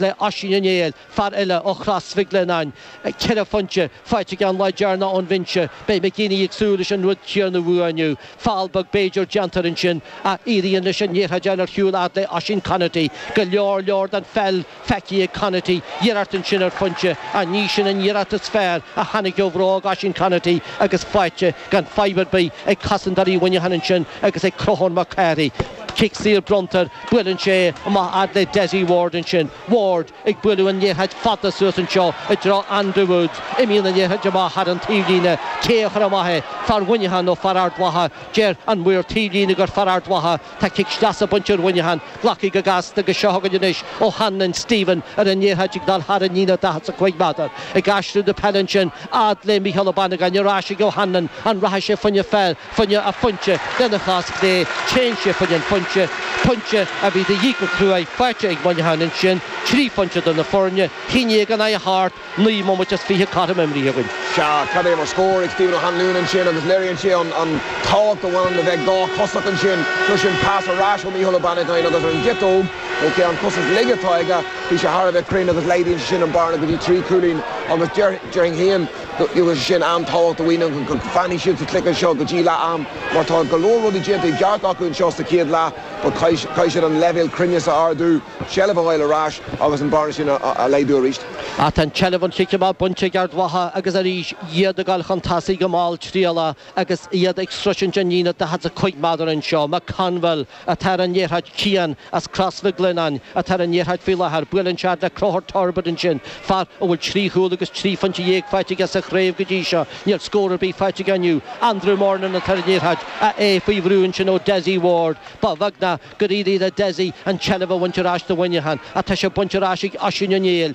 le Oisín Ó Néill, fear eile ó Chrois Mhic Lionnáin, ceithre phointe faighte aige an lá deireanach ón bhinse, beidh McGeeney ag súil leis an rud céanna uaidh inniu. Feall beag b'fhéidir déanta air ansin, ach éiríonn leis an liathróid a fháil ar shiúl fhad le Oisín Conaty. Go leor leor den pheil feicthe ag Conaty, iarracht ansin ar phointe, ach ní sin an iarracht is fearr a tháinig ó bhróg Oisín Conaty agus faighte gan fadhb ar bith ag cosantóirí Mhuineacháin ansin agus ag Conchúr Mac Cárthaigh. Cic saor bronntar Buaileann sé amach fhad le Dessie Ward ansin, Ward ag bualadh an liathróid fada suas anseo i dtreo Andrew Woods. Imíonn an liathróid amach thar an taobhlíne. Cé a chuir amach é? Fear Mhuineacháin nó fear Ard Mhacha? Deir an maor taobhlíne gur fear Ard Mhacha. Tá cic sleasa bainte ar Mhuineachán. Glactha go gasta agus seo chugainn anois O'Hanlon, Stephen ar an liathróid ag dul thar an líne 45 meadar. Ag aistriú na peile ansin fhad le Micheál Ó Banagáin. Ar ais ag O'Hanlon. An rachaidh sé fá choinne fá? fá choinne an phointe, lena chos chlé, téann sé fá choinne an phointe, pointe a bhí de dhíth go cruaidh, faighte ag Muineachán ansin, trí phointe idir na foirne, a haon déag in aghaidh a hocht, naoi mbomaite is fiche cothrom imeartha againn. Sea, cad é mar scór ag Stephen O'Hanlon ansin agus léiríonn sé an tábhacht a bhaineann le bheith dháchosach ansin, seo sin pas ar ais ó Micheál Ó Banagáin agus ar an gciotóg, nó an chos is laige atá aige, bhí sé thar a bheith cruinn agus laghdaíonn sé sin an bearna go dtí trí chúilín agus déarfainn féin, go bhfuil sé sin an-tábhachtach do Mhuineachán, go bhfanfaidh siad sa chluiche seo go dtí leath am, mar tá go leor rudaí déanta i gceart acu anseo sa chéad leath, but caithfidh siad an leibhéal cruinneas a ardú, seilbh a fháil ar ais agus an bearna sin a laghdú arís. Ach tá an tseilbh ón chic amach bainte ag Ard Mhacha agus arís iad ag goil chun tosaigh go malltriallach agus iad ag sroisint an líne 45 meadar anseo. McConville. atá ar an liathróid Cian as Crois Mhic Lionnáin atá ar an liathróid faoi láthair, buaileann sé le Conchúr Turbitt ansin, fear a bhfuil trí chúl agus trí phointe dhéag faighte aige sa chraobh go dtí seo, níl scór ar bith faighte aige inniu, Andrew Murnin atá ar an liathróid, a é faoi bhrú ansin ó Dessie Ward. Ba bheag ná gur éirigh le Dessie an tseilbh a bhaint ar ais do Mhuineachán ach tá sé bainte ar ais ag Oisín Ó Néill,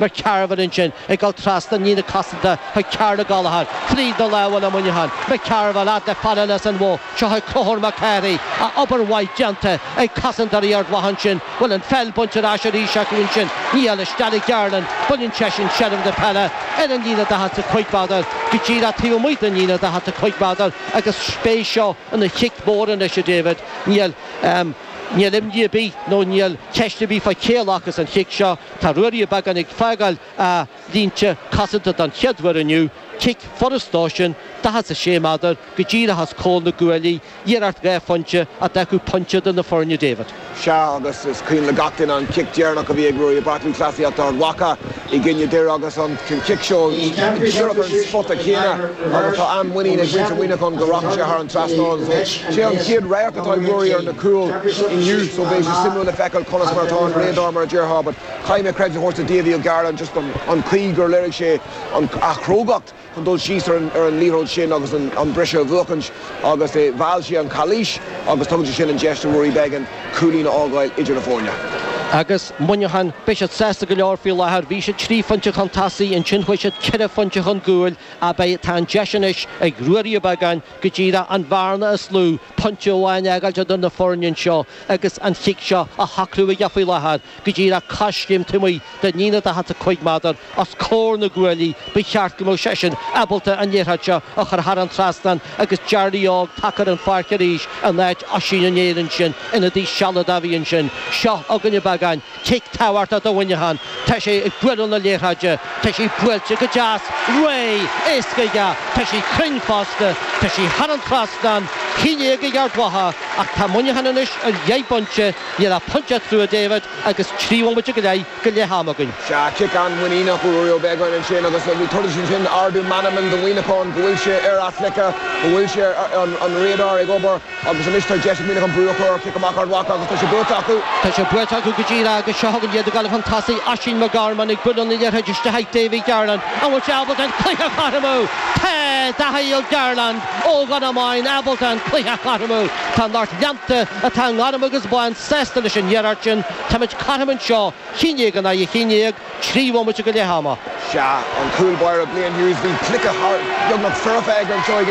Mac Cearbhaill ansin, ag dul trasna an líne cosanta chuig Karl Gallagher, fríd na lámha ag Muineachán, Mac Cearbhaill, fhad le fear eile as an Bhoth, seo chugainn Conchúr Mac Cárthaigh, a obair mhaith déanta ag cosantóirí Ard Mhacha ansin, an bhfuil an pheil bainte ar ais arís acu ansin, níl, isteach le Garland, baineann seisean seilbh na peile, ar an líne daichead 's a cúig mheadar, go díreach taobh amuigh den líne daichead 's a cúig mheadar, agus beidh sé seo ina chic mór anois, a David, níl, ahem, níl imní ar bith, nó níl ceist ar bith fá cé a ghlacas an cic seo, Tá Ruairí Ó Beagáin ag fágáil a línte cosanta don chéad uair inniu, cic furast dó sin, daichead 's a sé meadar go díreach os comhair na gcuaillí, iarracht dhá phointe a d'fhágfadh pointe idir na foirne, David. Sea, agus is cuimhin le gach duine an cic deireanach a bhí ag Ruairí i bPáirc Lúthchleasaíochta Ard Mhacha i gcoinne Dhoire agus an cic seo díreach ar an spota céanna agus tá an-mhuinín ag muintir Mhuineacháin go rachaidh sé thar an trasnán. Sé an chéad radharc atá ag Ruairí ar na cúil inniu so beidh sé suimiúil le feiceáil conas mar atá an radar mar a déarfá but caithfidh mé credit a thabhairt do David Garland just an an chaoi gur léirigh sé an a chrógacht chun dul síos ar an ar an liathróid sin agus an an briseadh a bhuachaint agus é mheall sé an cailís agus tugann sé sin an deis do Ruairí Beggan cúilín a fhágáil idir na foirne. Agus Muineachán, beidh siad sásta go leor faoi láthair, bhí siad trí phointe chun tosaigh, ansin chuaigh siad ceithre phointe chun gcúil, abair, tá an deis anois ag Ruairí Ó Beagáin go díreach an bhearna is lú, pointe amháin a fhágáilt idir na foirne anseo agus an chic seo a shocrú aige faoi láthair, go díreach coiscéim taobh amuigh den líne daichead 's a cúig méadar os comhair na gcuaillí, ba cheart go mbeadh seisean ábalta an liathróid seo a chur thar an trasnán agus Jarly Óg tagtha ar an pháirc arís in áit Oisín Uí Néill ansin, ionadaí sealadach a bhí ansin. Seo chugainn Ó Beagáin. Cic tabhartha do Mhuineachán. Tá sé ag bualadh na liathróide. Tá sí buailte go deas. Réidh! Éascaidh ea. Tá sí cruinn fosta. Tá sí thar an trasnán. A haon déag ag Ard Mhacha. Ach tá Muineachán anois ar dheich bpointe. Níl ach pointe eatarthu, a David, agus trí bhomaite go leith go leath-am againn. Sea, cic an-mhuiníneach ó Ruairí Beggan ansin agus tabharfaidh sé sin ardú meanman do Mhuineachán go bhfuil sé ar a chluiche, go bhfuil sé an radar ag obair. Agus anois tá deis ag Muineachán brú a chur ar chic amach Ard Mhacha agus tá sé buaite acu. Tá sé buaite acu go díreach agus seo chugainn iad ag gabháil chun tosaigh, Oisín McGorman ag bualadh na liathróide isteach ag Davy Garland. An bhfuil sé ábalta an cluiche a chothromú? Tá! Davy Garland ó Dhomhnach Maighean ábalta an cluiche a chothromú. Tá an lucht leanta atá i ngorm agus bán sásta leis an iarracht sin. Táimid cothrom anseo, a haon déag in aghaidh a haon déag, trí bhomaite go leath ama. Sea, an cúl báire Blaine Hughes, bhí cluiche thar beagnach foirfe aige anseo ach.